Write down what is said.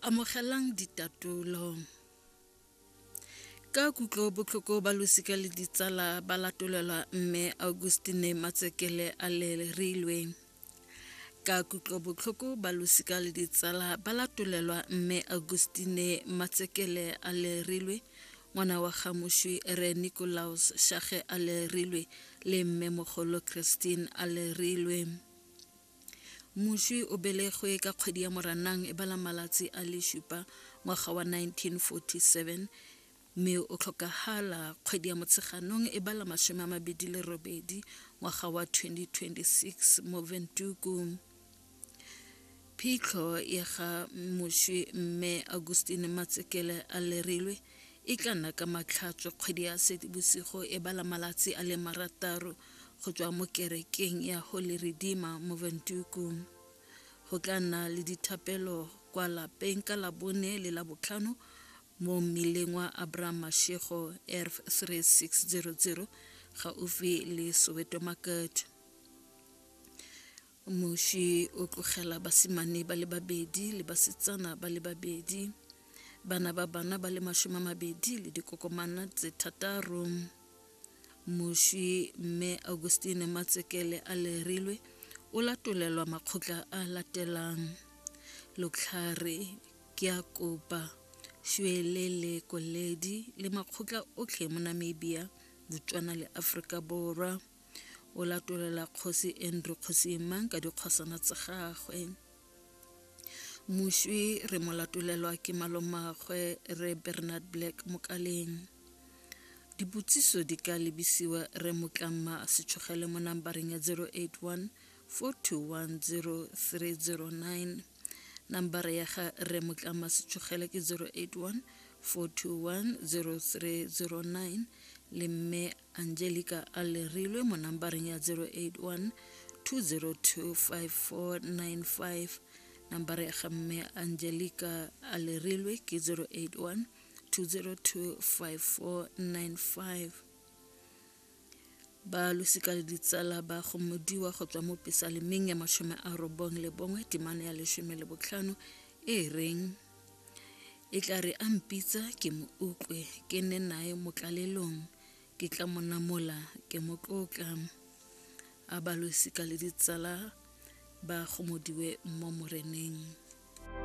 Amogelang ditatolo. Ka kutlo botlhoko ba losika le ditsala ba latolelwa mme Augustine Matsekele a le rilweng ka kutlobotlhoko ba losika le ditsala ba latolelwa mme augustine matsekele a lerilwe ngwana wa gamošwi re nicolaus shage a lerilwe le mme mogolo christine a lerilwe Moswi o belegwe ka kgwedi ya Moranang e bala malatsi a le supa ngwaga wa 1947 mme o tlhokagala kgwedi ya Motsheganong e bala masome a mabedi le robedi ngwaga wa 2026 mo Ventuku. Phitlho ya ga moswi mme Augustine Matsekele a lerilwe e tla nna ka matlhatswe kgwedi ya Seetebosigo e bala malatsi a le marataro go tswa mo kerekeng ya Holy Redeemer mo Ventuku. Go tla nna le dithapelo kwa lapeng ka labone le la botlhano mo mmileng wa Abraham Mashego ERF 3600 gaufi le Soweto Market. Moše o tlogela basimane ba le babedi le basetsana ba le babedi bana ba bana ba le mashome a mabedi le dikokomana tse thataro moši mme augustine matsekele a lerilwe o latolelwa makgotla a latelang lotlhare ke a kopa šwele le koledi le makgotla otlhe mo namibia botswana le aforika borwa o latolela kgosi andrew kgosi mang ka dikgosana tsa gagwe moswi re mo latolelwa ke malomagwe re bernard black mokaleng dipotsiso di ka lebisiwa re motlama setshogele mo nambareng ya 081 4210309 nambara ya ga re motlama setshogele ke 081 4210309 le mme angelica a lerilwe mo nambareng ya 081 2025495 nambara ya ga mme angelica a lerilwe ke 081 2025495 ba losika le ditsala ba gomodiwa go tswa mo pesalemeng ya mashome a robong le bongwe temano ya leshome le botlhano e reng e tla re a mpitsa ke mo utlwe ke nne nae mo tlalelong ke tla mo namola ke mo tlotla a balosika le ditsala ba gomodiwe mo moreneng thank you